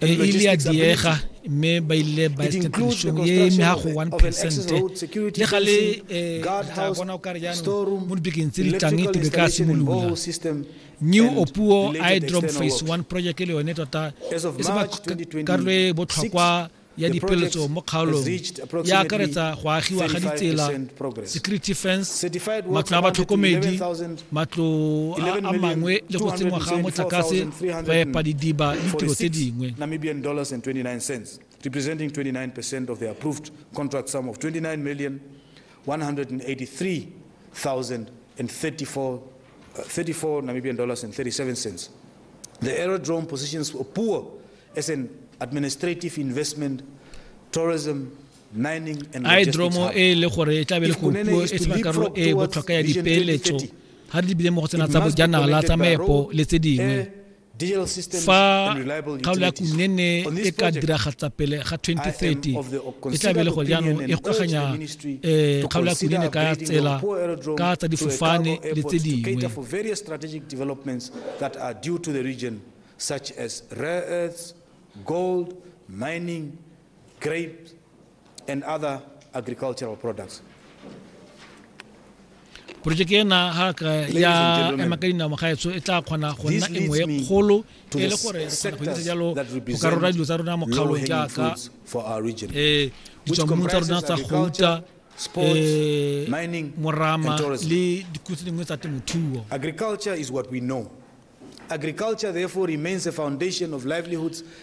e ile ya diega mme ba ile ba establishong e eme ga go one percent le ga le eh, tla bona o kare jaanong mo dibekeng tse di tlang tebe ka simolola new opuo idrom phase one project e le yone tota e se ba karolo e botlhokwa ya dipeletso mo kgaolong ya akaretsa go agiwa ga ditsela security fence matlo a batlhokomedi matlo a mangwe le go tsenngwa ga motlakase ba epa didiba le tiro tse dingwe representing 29% of the approved contract sum of 29 million 183,034 34 uh, Namibian dollars and 37 cents. The aerodrome positions Opuwo as an administrative investment, tourism, a e dromo e le gore e tla be le go puo e sena karolo e botlhokwa ya dipeeletso ga re di bile mo go tsena tsa bojanala tsa meepo le tse dingwe eh, fa kgaolo ya kunene e ka diragatsa pele ga 2030 e tla be le go jaanong e gokaganya um kgaolo ya kunene ka tsela ka tsa difofane le tse dingwe such as rare earths, gold, mining, Grapes and other agricultural products. porojeke ena haka ya ema ka dinao magaetso e tla kgona go nna e nngwe e kgolo e le gore re kgona go itse jalo go ka rora dilo tsa rona mo kgaolong jaaka um eh, ditswammu tsa rona tsa gouta um morama le dikotsi dingwe tsa temothuo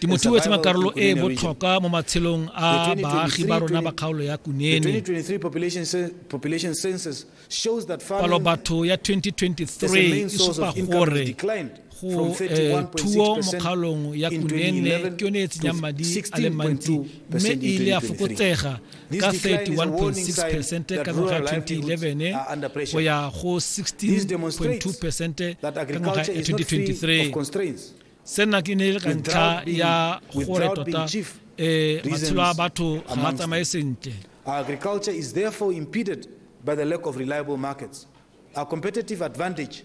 Temothuo e tshela karolo e e botlhokwa mo matshelong a baagi ba rona ba kgaolo ya Kunene. Palo batho ya 2023 e supa gore go eh, thuo mo kgaolong ya Kunene ke yone e tsenyang madi a le mantsi mme e ile ya fokotsega ka 31.6 percent ka ngwaga 2011 go ya go 16.2 percent ka ngwaga 2023 sena ke ne le ka ntlha ya gore tota um matshelo a batho ga a tsamaye sentle agriculture is therefore impeded by the lack of reliable markets our competitive advantage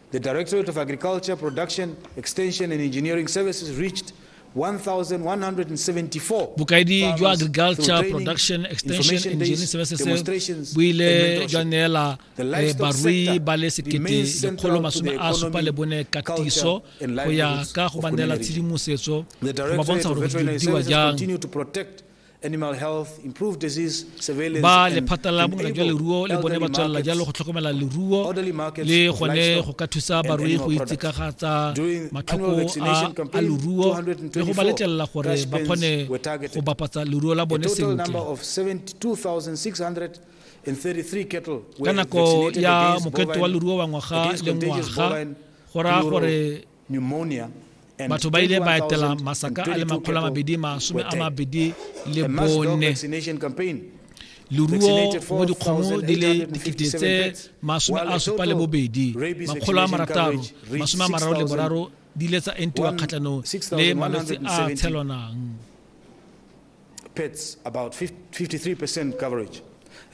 The Directorate of Agriculture Production, Extension and Engineering Services reached 1,174 bokaedi jwa agriculture production extension engineering services bo ile jwa neela eh, barui ba le sekete lekgolo masome a supa le bone katiso go ya ka go ba neela tshedimosetso go ba bontsha gore go diwa jang animal health, improve disease surveillance. Ba lephata la bongaka jwa leruo le bone ba tswelela jalo go tlhokomela leruo le gone go ka thusa barui go itsekagaatsa matlhoko a leruo le go ba letlelela gore ba kgone go bapatsa leruo la bone sentle ka nako ya mokete wa leruo wa ngwaga le ngwaga go raya gore batho ba ile ba etela masaka a le makgolo a mabedi masome a mabedi le bone leruo mo dikgomo di le dikete tse masome a supa le bobedi makgolo a marataro masome a mararo le boraro di ile tsa entiwa kgatlhanong le malwetse a tshelwanang pets about 53% coverage.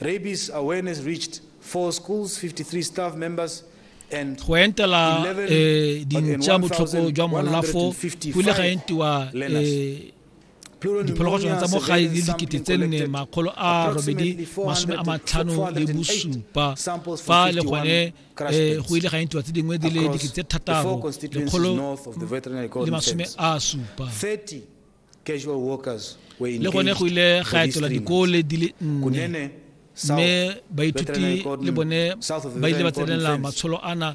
Rabies awareness reached four schools, 53 staff members, go entela eh, dintša botlhoko jwa molafo go ile ga entiwa eh, diphologolo tsone tsa mo gae le dikete tse nne makgolo a robedi masome a matlhano le bosupa fa le gone eh, go ile ga entiwa tse dingwe di le dikete tse thataro lekgolo le masome a supa le gone go ile ga etela dikole di le nne mme baithuti le bone ba ile ba tsenela matsholo ana